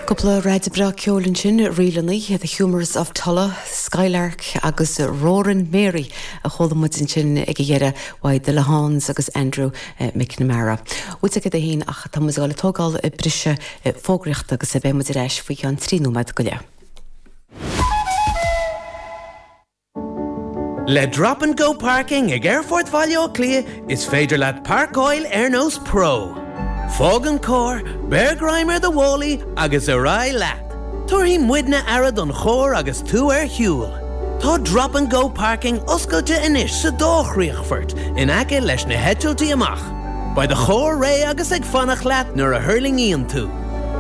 Cúpla ráig bhreá ceoil ansin, ríleannaí, The Humours of Tulla, Skylark agus Roaring Mary a chuala muid ansin ag a dheireadh, Haley Le Hans agus Andrew McNamara. uaidh agaibh é fhéin ach tá muid ag dul ag tógáil briseadh fógraíochta agus beidh muid ar ais faoi cheann trí nóiméad go leith. Le Drop and Go Parking ag Aerfort Bhaile Átha Cliath is féidir leat páirceáil ar nós pro. Fág an carr, beir greim ar do mhálaí agus ar aghaidh leat. Tabharfaidh muidne aire don charr agus tú ar shiúl. Tá Drop and Go Parking oscailte anois sa dá chríochfort in aice leis na heitiltí amach. Beidh do charr réidh agus ag fanacht leat nuair a thuirlingíonn tú.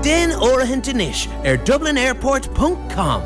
Déan áirithint anois ar dublinairport ponc com.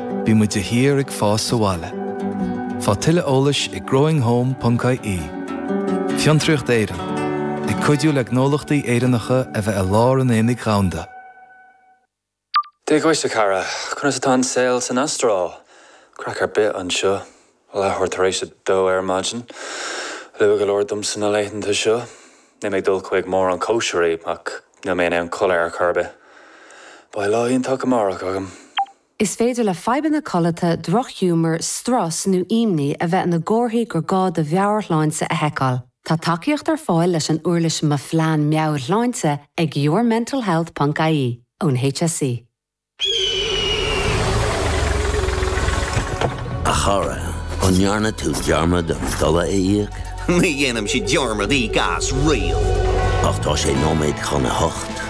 Bímid de shíor ag fás sa bhaile. Faigh tuilleadh eolais ag growinghome.ie Fiontraíocht Éireann, ag cuidiú le gnólachtaí Éireannacha a bheith i lár an aonaigh dhomhanda. Dia dhuit a chara. Conas atá an saol san Astráil? Craic ar bith anseo. Leathuair tar éis a dó ar maidin. Luath go leor domsa na laethanta seo. Níl mé ag dul chuig mórán cóisirí, ach níl mé in ann codladh ar chor ar bith. Beidh lá iontach amárach agam. Is féidir le fadhbanna codlata, drochghiúmar, strus nó imní a bheith ina gcomharthaí gur gá do mheabhairshláinte a sheiceáil. Tá tacaíocht ar fáil leis an uirlis Mo Phlean Meabhairshláinte ag yourmentalhealth ponc ie ón HSE. A chara, an ndearna tú dearmad an dola a íoc? Ní dhéanaimse dearmad íoc as riamh. Ach tá sé nóiméad chun a hocht.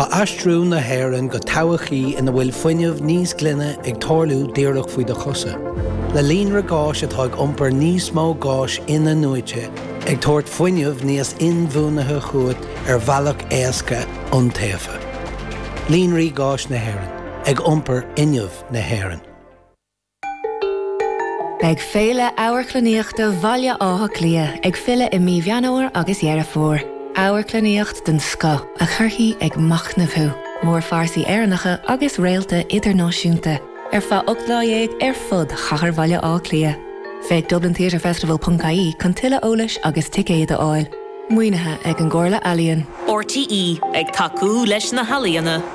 Tá aistriú na hÉireann go todhchaí ina bhfuil fuinneamh níos glaine ag tarlú díreach faoi do chosa. Le líonra gáis atá ag iompar níos mó gáis in-athnuaite, ag tabhairt fuinneamh níos inbhuanaithe chugat ar bhealach éasca, iontaofa. Líonraí Gáis na hÉireann, ag iompar fhuinneamh na hÉireann. Beidh Féile Amharclannaíochta Bhaile Átha Cliath ag filleadh i mí Mheán Fhómhair agus Dheireadh Fómhair. Amharclannaíocht den scoth a chuirfidh ag machnamh thú, mórphearsaí Éireannacha agus réalta idirnáisiúnta, ar feadh ocht lá dhéag ar fud chathair Bhaile Átha Cliath. Féach dublintheatrefestival.ie chun tuilleadh eolais agus ticéad a fháil. Maoinithe ag an gComhairle Ealaíon. RTÉ ag tacú leis na healaíona.